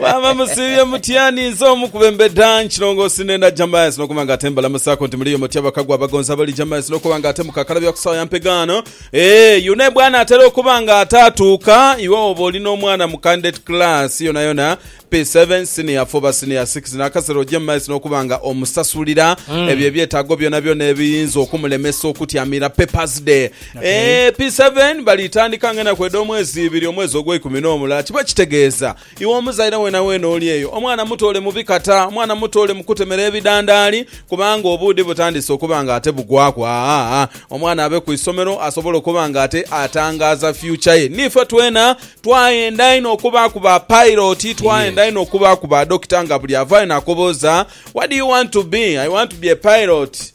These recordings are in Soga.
Maama musiibye mutya ninze omu ku bembeda nkilongoosi nenda Jamas nokuba nga ate mbalamusaako nti muliyo mutya bakagwa abagonzi abali Jamas nokuba nga ate mukakalabya ku sawa ya mpegaano ee eh, yune bwana atera okuba nga ate atuuka iwe oba oli n'omwana mu candidate class yonayona P7 senior 4 oba senior 6 nakasera oje mu maiso nokuba nga omusasulira mm. ebyo ebyetaago byonabyona ebiyinza okumulemesa okutyamira papers day P7, Balitandika nga enaku edh'omwezi ibiri omwezi ogweikumi n'omulala kiba kitegeeza iwe omuzaire weenaweena oli eyo, omwana mutoole mu bikata, omwana mutoole mu kutemera ebidandaali kubanga obuudhi butandise okuba nga ate bugwaku aa-aa-aa omwana abe ku isomero asobole okuba nga ate atangaaza future ye. Niife twena twayenda inho okubaaku ba pairoti, twayenda inho okubaaku ba dokita nga buli avaayo n'akobooza what do you want to be? I want to be a pirot.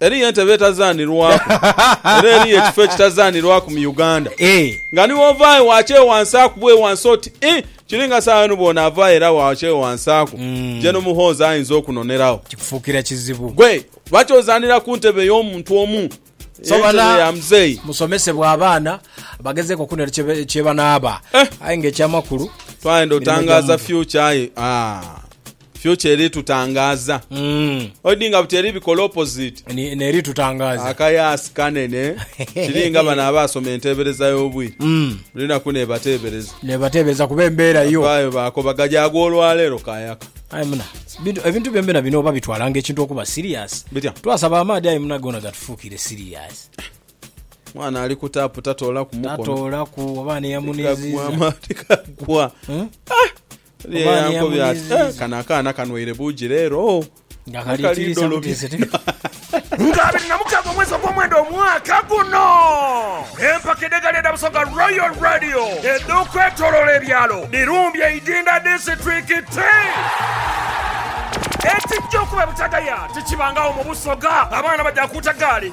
Eriyo entebe etazaanirwaku era eriyo ekifo ekitazaanirwaku mu Uganda nga ni w'ovaayo waakyewansaaku bwewansi oti ii kiri nga saagha yonu bw'onaavaayo era waakyewansaaku gye n'omuhoozi ayinza okunonerawo. Kikufuukira kizibu. Gwe oba ky'ozaanira ku ntebe ey'omuntu omu, entebe ya muzeeyi. Musomesebwe abaana bagezeeko okunera kye banaaba. Aye nga eky'amakulu. Twayenda otangaaza future aye aah. Future eri tutangaaza. Oidhi nga buti eri bikola opposite. Ni- neri tutangaaza Akayaasi kanene kiri nga bano abaasoma enteebereza y'obwire Mm. buli naku nebateebereza nebateebereza kuba embeera yo vaayo baakobaga gyagwa olwaleero kayaka aye muna bintu- ebintu byombena bino oba bitwala nga ekintu okuba serious Bitya? twasaba amaadhi aye muna gona gatufuukire serious mwana ali ku taapu tatoolaku mukono tatoolaku oba neyamuniziza kagwa amaati kagwa Hmm? Oba Oba ani yankobya ati yamuyiziiza. "Eh, kano akaana kanwaire buugi leero oh, Nga kali kali tiisa dolobi." butiisa tiisa. Nga abiri na mukaaga omwezi ogw'omwenda omwaka guno empaka edh'egaali edha Busoga Royal Radio edh'okwetoloola ebyalo dhirumbye Idinda disiturikiti Ekijja okuba e Butagaya tikibangagho mu Busoga. Abaana bagya kuuta gaali